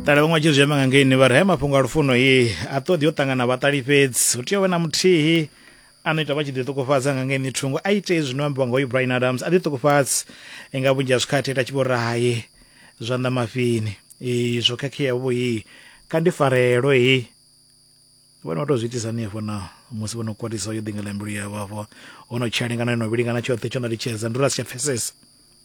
ṱala vhaṅwe vha tshi zwi amba nga ngeini vha ri haya mafhungo a lufuno i a ṱoḓi yo ṱangana vhaṱali fhedzi hu tea u vha na muthihi a no ita vha tshi ḓi ṱukufhadza nga ngeini thungo a ite zwino ambiwa nga hoyu brian adams a ḓi ṱukufhadzi nga vhunzhi ha zwikhathi ita tshi vho ri haye zwanḓa mafhini i zwo khakhea vho i kha ndi farelo i vhone vha tou zwi itisa hanefho na musi vho no kwatisa yo ḓingela mbilu yavho afho ho no tshelengana yo no vhilingana tshoṱhe tsho no litshedza ndi uri a si tsha pfesesa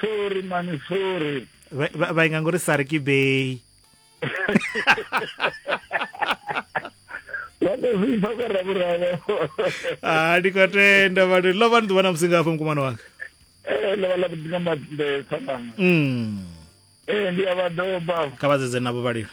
sorry mani sorry vha inga ngori sari ke bay ah, ndi khou tenda vhathu ḽo vha ni ḓuvha na musi ngafho mukumana wanga eh, ḽo vha ḽa vhuḓi nga maḓumbe tsamanga mm. eh, ndi a vha doba kha vha dzedze navho vhalilo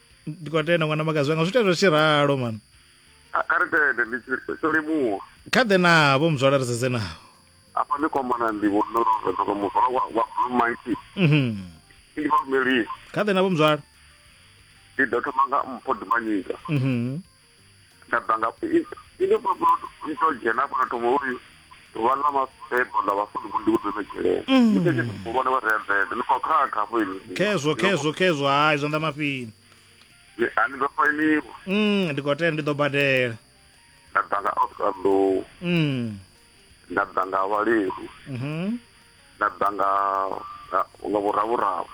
ndi khou tenda ṅwana makazi wanga zwi tenda tshi ralo mani A- kha ri tende ndi tshi- tsho limuwa kha ḓe navho muzwala ri sedze navho afha ndi kwamana ndi vhonorodoko muzwala wa wa blue monkey Mhm. ndi vha lumelisa kha ḓe navho muzwala ndi ḓo thoma nga mpho dimanyika Mhm. nda bva nga ine baba i to dzhena fhano thoma uri ḓuvha ḽa mafebo ḽa vhafunzi vho ndi u ḓometshela mm. ite tshithu vhone vha redzede ni khou khakha hafho ini khezwo khezwo khezwo hayi zwanḓa mafini a ni ḓo fainiwa mm, ndi khou tenda ndi ḓo badela nda bva nga oscar low mm. nda bva nga vhalehu mhm. nda bva nga nga vhuravhuravo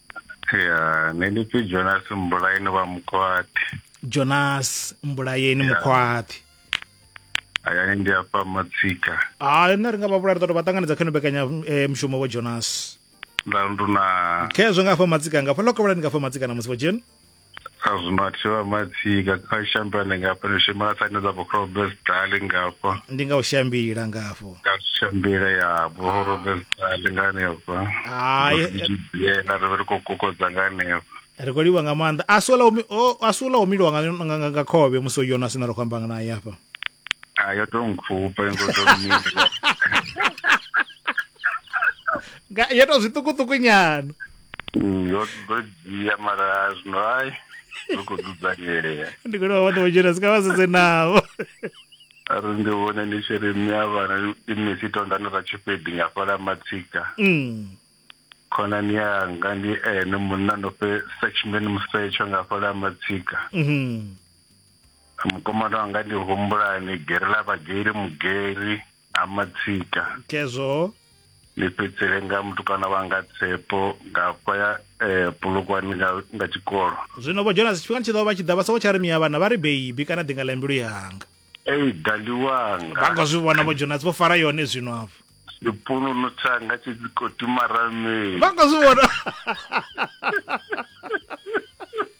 ya nṋe ndi pfi jonas mbulayeni vha mukhwathi jonas mbulayeni mukhwathi hayani ndi afha matsika hayi nṋe ri nga vha vhulaya ri ḓo to vha ṱanganedza kha ino mbekanya eh, mushumo vho jonas nda nduna khezwo nga afha matsika nga fha lokovhela ni nga fha matsika na musi vho dzheni azwinathiwa matsika kha shambani ngafha ni shuma na tsaine dza vhorobes dali ngafha ndi nga u shambila ngafho nga shambile ya vhorobes dali nga hanefha Hai. yena ri vhe ri khou kokodza nga hanefha ri khou livha nga maanḓa a si ola umi- o- a si ola umiliwa nga, nga, nga, nga khovhe musi o yona sina ri khou amba nga naye hafha a yo to nkhupha ngo to mila Nga- yo to zwiṱukuṱuku nyana ndo ndo dzhia mara zwino ai ndo khou dzudzanyea ndi khou vha ṱuwa dzhena sika vha sedze navho ari ndi vhone ndi tshi ri mme a vhana ine si tondani ra tshifhedi nga fhala matsika Mm. khonani yanga ndi ene munna ndo fhe section musetsho nga fhala matsika Mhm. mukomana wanga ndi humbulani gere ḽa vhageri mugeri ha matsika kezwoho ni fhedzele nga mutukana wanga tsepo nga hafha ya eh, pulukwani nga, nga tshikolo zwino vho jonas tshifhingani tshi ḓo vha tshi ḓa vha soko tsha ri miya vhana vha ri beibi kana ḓinga ḽa mbilu yanga ei dali wanga vha nga zwi vhona vho jonas vho fara yone zwino afho sipununu tsanga tshi dzi khou timaramei vha nga zwi vhona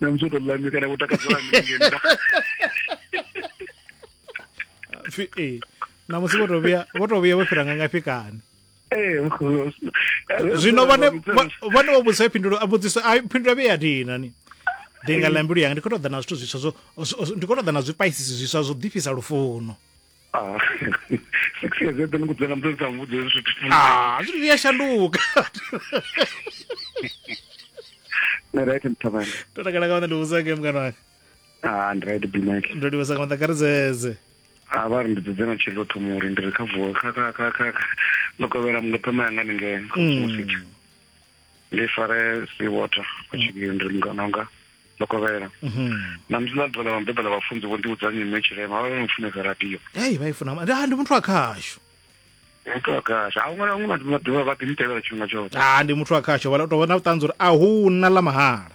na musi to lami kana ku takadzela mingenza eh, na musi vho to vhuya vho to vhuya vho fhira nga ngafhi kani eh, zwino vhone vhone vho vhudzisa phindulo a vhudzisa a phindulo vhe ya dina ni ndi nga lambilu yanga ndi khou ṱoḓa na zwithu zwiswa zwo ndi khou ṱoḓa na zwipaisisi zwiswa zwo ḓifhisa lufuno Ah, six years eḓe ni kudzela muthu sa muvhudza hezwi zwithu ah zwithu zwi a shanduka ni right mthavhani ndo takala nga maanḓa ndi vhudza nge mngana wanga ah ndi right bimake ndo livhesa nga maanḓa kha ri dzedze a vha ri ndi dzedze na tshilo thoma uri ndi ri kha vuwa kha kha kha kha kha- ndo kovhela muḽo phema yanga ni ngeno Mm. ndi fare si water ku tshivhiyo ndi mungana wanga ndo kovhela na musi na ḓuvha ḽa vhabebi ḽa vhafunzi vho ndiudza nyimwe tshirema vha vha no funesa radio ei vha i funa ma- ndi ah, ndi muthu wa khashu utoakasha a huṅwe na huṅwe vhathu vha ḓivha vha ḓimtevhela tshifhinga tshoṱhe ah, ndi muthu wa khashu vha tou vha na vhuṱanzi uri a hu na ḽa mahala